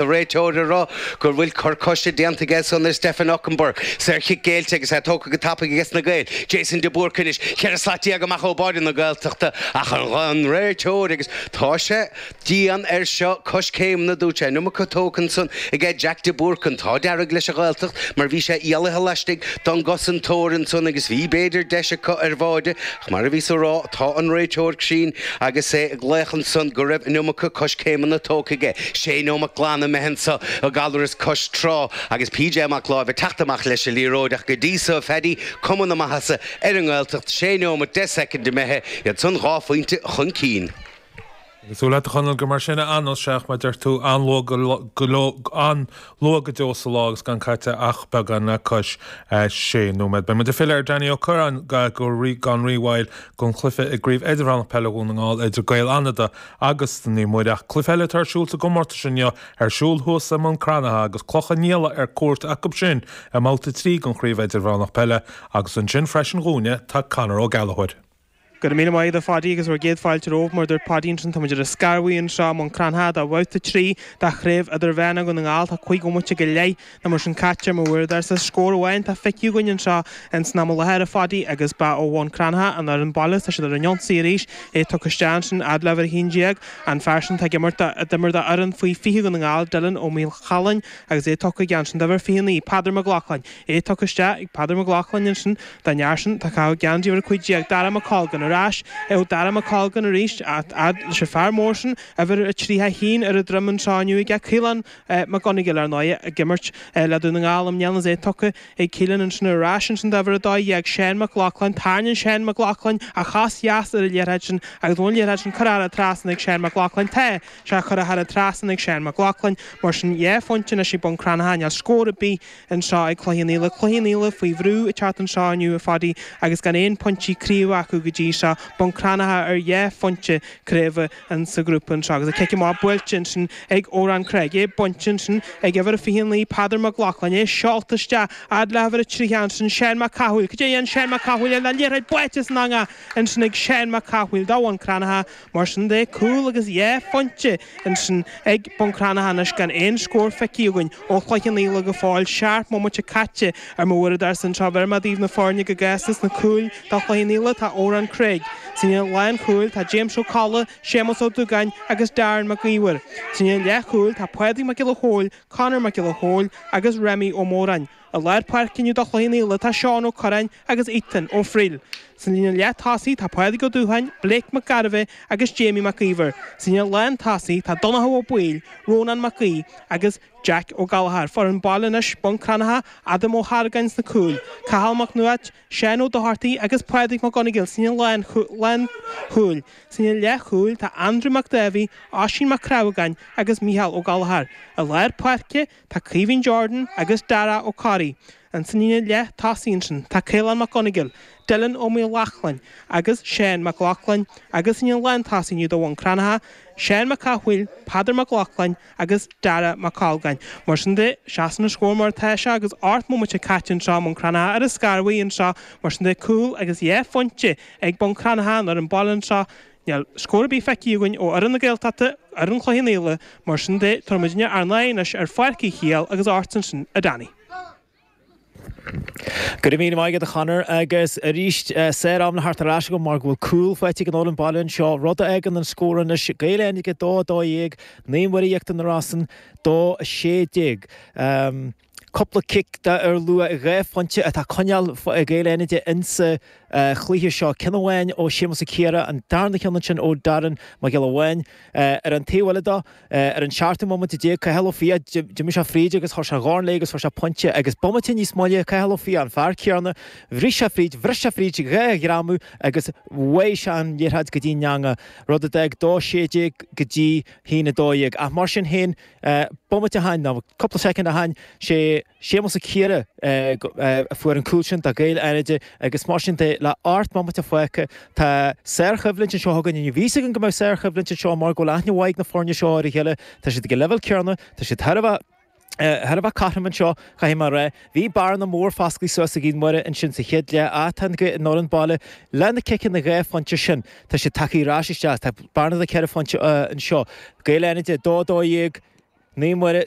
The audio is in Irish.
Is an réiteoir ag rá go bhfuil cor coise déanta aige ansan ar Stefan Okunbor, saorchic géillte agus é tógtha go tapaidh aiges na Gaeil, Jason de Búrca anois ceithre slat déag amach ó bháide na Gaeltachta ach an réiteoir agus tá sé dian air seo coiscéimeanna dúirt sé an iomarca tógtha ansan aige Jack de Búrca an t-ádh dearg leis an Ghaeltacht mar bhí sé éalaithe laistigh don gcosantóir ansan agus bhí b'fhéidir deis acu ar bháide Mar a bhíos ag rá, tá an réiteoir cruinn agus é ag glaoch ansan go raibh an iomarca coiscéimeanna tógtha aige, sé neomat glan imithe anso i nGallaras cois trá agus PJ Mac Láimh ag teacht amach leis an liathróid ach go dtí so, a Phaddy, cuma na maitheasa ar an nGaeltacht, sé neomat, deich soicind imithe, iad san dhá phointe chun cinn. Súil agat, a Chonaill, gur mar sin a fhanfas sé, ach mar a deir tú an-luath go deo sa lá agus gan caite ach beagán le cois sé nóiméad, beidh muid ag filleadh ar Danny Ó Corráin gan rí-mhoill don chluiche i gCraobh Idirmheánach Peile Dhún na nGall idir Gaeil Fhánada agus Naomh Muire. Ach cluiche eile atá ar siúl sa gcomórtas inniu ar siúl thuas i mBun Cranncha agus Cloich Cheann Fhaola ar cuairt acu sin i mbabhta trí den Chraobh Idirmheánach Peile agus ansin freisin dhúinne tá Conor Ó Gallachóir. Go raibh míle maith agat a Phaddy agus bhur gcéad fáilte romhaibh. Mar a dúirt Paddy ansin, táimid ar an Scarbhaí anseo i mBun Cranncha do Bhabhta 3 de Chraobh Idirmheánach Dhún na nGall. Tá cúig bhomaite go leith nó mar sin caite ar mo uaireadóirsa. Scór amháin atá feicthe againn anseo in san am i láthair, a Phaddy, agus ba ó Bhun Cranncha an fhoireann baile. Tá siad ar an ionsaí arís. É tugtha isteach ansin fhad le uimhir a haon déag, an fear sin atá ag imirt do, a d'imir d'fhoireann faoi fiche Dhún na nGall, Dylan Ó Maolchalain, agus é tugtha aige ansin d'uimhir fiche naoi, Peadar MacLochlainn. é tugtha isteach ag Peadar Mac Lochlainn ansin, don fhear sin atá ag caitheamh geansaí uimhir 15 Dara Mac Colgan ar ais, é ó Dhara Mac Colgan arís, fhad leis an fhear mór sin, uimhir a 31 ar a dhroim anseo inniu aige, Caolán Mac Gonigle, ar ndóighe, ag imirt le Dún na nGall i mbliana, is é tugtha ag Caolán ansin ar ais ansin d'uimhir 12 Seán Mac Lochlainn, tarraingíonn Seán Mac Lochlainn a chos dheas ar an liathróid sin agus an liathróid sin curtha thar an trasnán ag Seán Mac Lochlainn, tá sé curtha thar an trasnán ag Seán Mac Lochlainn, mar sin dhá phointe anois ag Bun Cranncha níl scór ar bith. anseo ag Cloich Cheann Fhaola. Cloich Cheann Fhaola faoi bhrú ag teacht anseo inniu, a Phadaí, agus gan aon phointí craoibhe acu go dtí seo. Bun Cranncha ar dhá phointe craoibhe in sa ghrúpa anseo agus an cic amach buailte ansin ag Odhrán Craig. É bainte ansin ag uimhir a 29, Peadar Mac Lochlainn. É seolta isteach fhad le uimhir a 30 ansin, Seán Mac Cathmhaoil. Cad é a dhéanfas Seán Mac Cathmhaoil? An liathróid buailte san eangach ansin ag Seán Mac Cathmhaoil do Bhun Cranncha. Mar sin de, cúl agus dhá phointe ansin ag Bun Cranncha anois gan aon scór feicthe againn ó Chloich Cheann Fhaola go fóill. Seacht mbomaite caite ar mo uaireadóirsa anseo tabharfaidh mé daoibh na foirne go gasta sna cúil do Chloich Cheann Fhaola tá Odhrán Craig. Sna lánchúil tá James Ó Colla, Séamus Ó Dúgáin agus Darren Mac Íomhair. Sna leathchúil tá Pádraig Mac Giolla Chóill, Conor Mac Giolla Chóill agus Remi Ó Móráin. I lár páirce inniu do Chloich Cheann Fhaola tá Seán Ó Cuirreáin agus Ethan Ó Frighil. Sa líne leath-tosaigh tá Pádraig Ó Dúcháin, Blake Mac Gairbheith agus Jamie Mac Íomhair. Sa líne lán tosaigh tá Donnchadh Ó Baoill, Rónán Mag Aoidh agus Jack Ó Gallchóir. Foireann baile anois, Bun Cranncha, Adam Ó hArgáin sna cúil, Cathal Mac Nuadhat, Seán Ó Dochartaigh agus Pádraig Mac Congail sa líne lán chúil. Sa líne leath chúil tá Andrew Mac Dáibhí, Oisín Mac Crábhagáin agus Micheál Ó Gallchóir. I lár páirce. Tá Caoimhín Jordan agus Dara Ó Carraí ansin ina leith tosaigh ansin, tá Caolán Mac Congail, Dylan Ó Maolchalann agus Seán Mac Lochlainn agus ina lán tosaigh inniu do Bhun Cranncha, Seán Mac Cathmhaoil, Peadar Mac Lochlainn agus Dara Mac Colgáin. Mar sin de, seasann an scór mar atá sé agus ocht mbomaite caite anseo i mBun Cranncha ar an scarbhaí anseo mar sin de, cúl agus dhá phointe ag Bun Cranncha an fhoireann baile anseo Níl scór ar bith feicthe againn ó fhoireann na Gaeltachta ag foireann Chloich Cheann Fhaola, mar sin de, tabharfaidh muidinne ár n-aghaidh anois ar Pháirc Uí Shiadhail agus ort ansin, a Danny. Go raibh míle maith agat, a Chonor, agus arís, sár-am le theacht ar ais agam mar go bhfuil cúl faighte ag an fhoireann baile anseo, rud a fhágann an scór anois, Gaeil Fhánada 2, 12, Naomh Muire Íochtar na Rosann 2, 16. Cúpla cic dar luach dhá phointe atá ag coinneáil Gaeil Fhánada insa chluiche seo, ceann amháin ó Shéamus Ó Ciardha, an darna ceann ansin ó Darren Mac Giolla Bháin. Ar an taobh eile dó, ar an seachtú mbomaite déag, Cathal Ó Fiaich, d'imigh sé fríd agus chuir sé a dhorn léi agus fuair sé pointe agus bomaite níos moille, Cathal Ó Fiaich, an fear céanna, bhris sé fríd, bhris sé fríd dhá ghreamú agus bháigh sé an liathróid go dtí'n eanga, rud a d'fhág dó sé déag go dtí a haon a dó dhéag. Ach mar sin féin. Bomaite ó shin, nó cúpla soicind ó shin, sé Séamus Ó Ciardha a fuair an cúl sin do Ghaeil Fhánada agus mar sin de, le hocht mbomaite fágtha, tá sárchoimhlint anseo againn. Bhí a fhios againn go mbeadh sárchoimhlint anseo mar go bhfuil aithne mhaith ag na foirne seo ar a chéile, tá siad ag an leibhéal céarna, tá siad thar a bheith thar a bheith cothrom anseo, caithfidh mé a rá. Bhí bearna mór fosclaithe suas ag Naomh Muire ansin sa chéad leath, á, tá an ghaoth ag an fhoireann baile, leis na ciceanna dhá phointe sin, Tá siad tagtha ar ais isteach. Tá bearna de ceithre phointe anseo. Gaeil Fhánada, 2-12, Naomh Muire,